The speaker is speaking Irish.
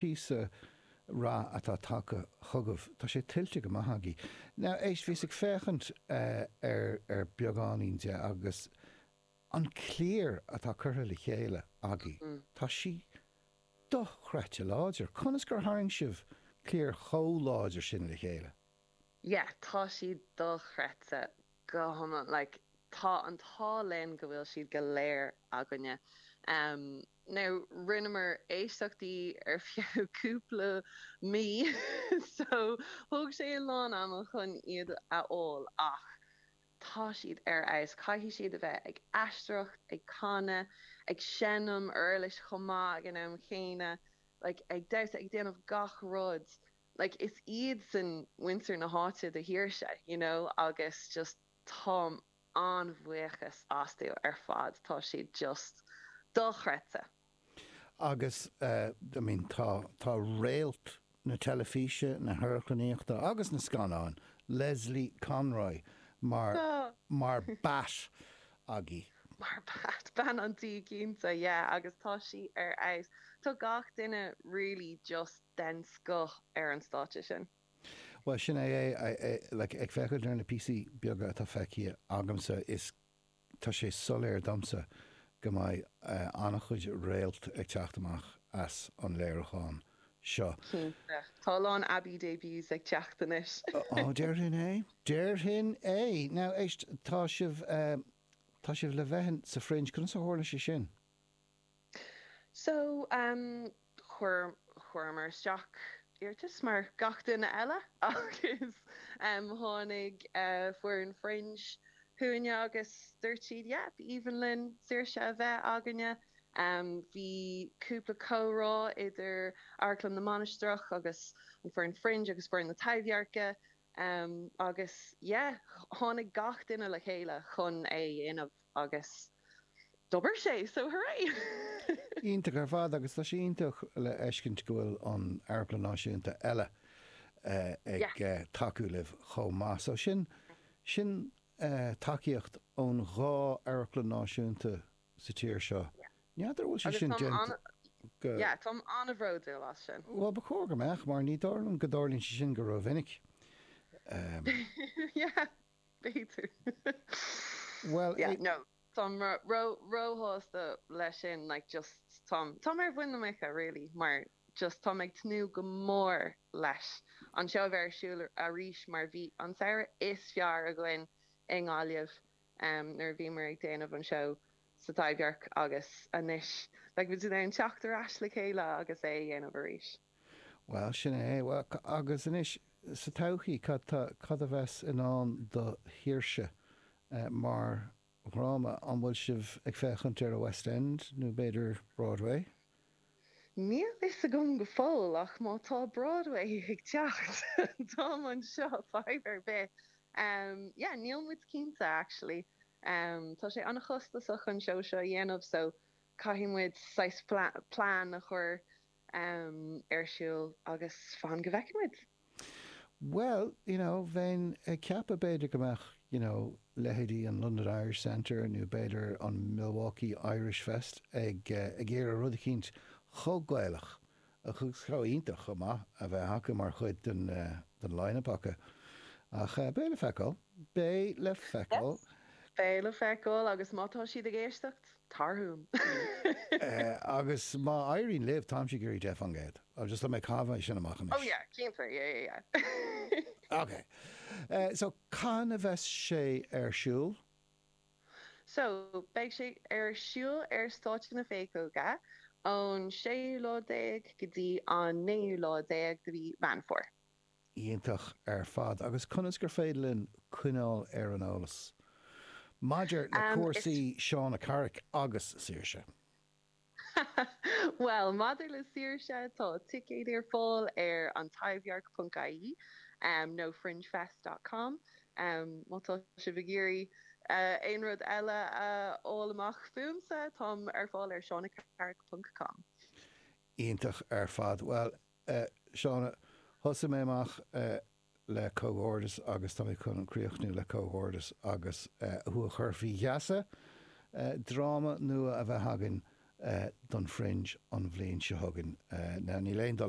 Píosa rath atá tagtha chugaibh. Tá sé tuillte go maith agaibh. Now, éist, bhíos ag féachaint ar ar beagáinín de agus an cliar atá curtha le chéile agaibh, tá sí dochreidte láidir. Conas gur tharraing sibh cliar chomh láidir sin le chéile? yeah tá siad dochreidte go hiomlán like tá an t-ádh linn go bhfuil siad go léir againne em now rinneamar éisteachtaí ar feadh cúpla mí so thóg sé a lán ama chun iad a fháil ach tá siad ar fheabhas caithfidh siad a bheith ag aisteoireacht ag canadh ag seinm uirlis chomh maith ag an am chéanna like ag damhsa ag déanamh gach rud like is iad san muintir na háite de Saoirse you know agus just táim an-bhuíoch astu ar fad tá siad just dochreidte. Agus eh I mean tá tá réalt na teilifíse, na hamharclannaíochta agus na scannáin, Lesley Conroy mar Tá. mar Bat agaibh. mar Bat, bean an tí cinnte yeah agus tá sí ar fheabhas tá gach duine really just. den scoth ar an stáitse sin. Bhuel sin é é, like ag féachaint ar na píosaí beaga atá feicthe agamsa is tá sé soiléir domsa go mbeidh an-chuid réalt ag teacht amach as an léiriúchán seo. Cinnte. Tá a lán Abbey debuts ag teacht anois. Ó déarfainn é, déarfainn é! Now éist, tá sibh, tá sibh le bheith sa Fringe, conas a tharla sé sin? So, em, chuir, chuireamar isteach iarratas mar gach duine eile agus, em, tháinig, eh, foireann Fringe chugainne agus dúirt siad, yep, b'aoibhinn linn Saoirse a bheith againne. Em, bhí cúpla comhrá idir Amharclann na Mainistreach agus an foireann Fringe agus foireann na Taibhdhearca. Ehm agus yeah tháinig gach duine le chéile chun é a dhéanamh agus d'obair sé so hooray! Iontach ar fad agus tá sé iontach le feiscint go bhfuil an Amharclann Náisiúnta eile ag yeah tacú libh chomh maith so sin sin tacaíocht ón dhá Amharclann Náisiúnta sa tír seo. N'fheadar an bhfuil sé sin déanta go. Yeah, táim an-bhródúil as sin. Bhuel, ba chóir go mbeadh, mar ní dóigh liom go dtarlaíonn sé sin rómhinic. Yeah, b'fhéidir. Bhuel, yeah, no. Táim ró-shásta leis sin, like, just táim, táim ar mhuin na muice, really, mar just táim ag tnúth go mór leis an seó a bheith ar siúl arís mar bhí an samhradh is fearr againn i nGaillimh nuair a bhíomar ag déanamh an seó sa Taibhdhearc agus anois beidh muid in ann teacht ar ais le chéile agus é a dhéanamh arís. Bhuel, sin é. Agus anois, sa todhchaí, cad a bheas i ndán do Shaoirse mar dhráma? An bhfuil sibh ag féachaint ar an West End nó b'fhéidir Broadway? Níl a fhios agam go fóill ach má tá Broadway ag teacht, táim anseo, fadhb ar bith. Yeah, níl muid cinnte actually. Tá sé an-chostasach an seó seo a dhéanamh so caithfidh muid saghas plean a chur ar siúl agus fan go bhfeicfidh muid. Bhuel, you know, bheinn ag ceapadh b'fhéidir go mbeadh, you know, leithéidí an London Irish Centre nó b'fhéidir an Milwaukee Irish Fest ag, eh, ag iarraidh rud eicínt chomh Gaelach agus chomh hiontach chomh maith a bheith acu mar chuid den eh, den line-up acu. Ach eh, beidh le feiceáil. Beidh le feiceáil. Beidh le feiceáil agus má tá siad ag éisteacht. Agus má éiríonn libh, táimse ag iarraidh deich fan gcéad. Agus just tá mé ag caitheamh é sin amach anois. Oh yeah, cinnte, yeah, yeah, yeah. Ok, so cathain a bheas sé ar siúl? So, beidh sé ar siúl ar stáitse na Péacóga ón séú lá déag go dtí an naoú lá déag de mhí Mheán Fómhair. Iontach ar fad agus conas gur féidir linn coinneáil ar an eolas maidir le cúrsaí Shauna Carrick agus Saoirse? Bhuel, maidir le Saoirse, tá ticéid ar fáil ar antaibhdhearc ponc ie nó fringefest dot com agus má tá sibh ag iarraidh aon rud eile a fháil amach fúmsa, táim ar fáil ar shaunacarrick ponc com. Iontach ar fad. Bhuel, Eh, Shauna, thosaigh mé amach, eh, le comhghairdeas agus tá mé chun críochnú le comhghairdeas agus, eh, thú a chur faoi gheasa, eh, dráma nua a bheith againn, eh, don Fringe an bhliain seo chugainn. Eh, now níl aon dul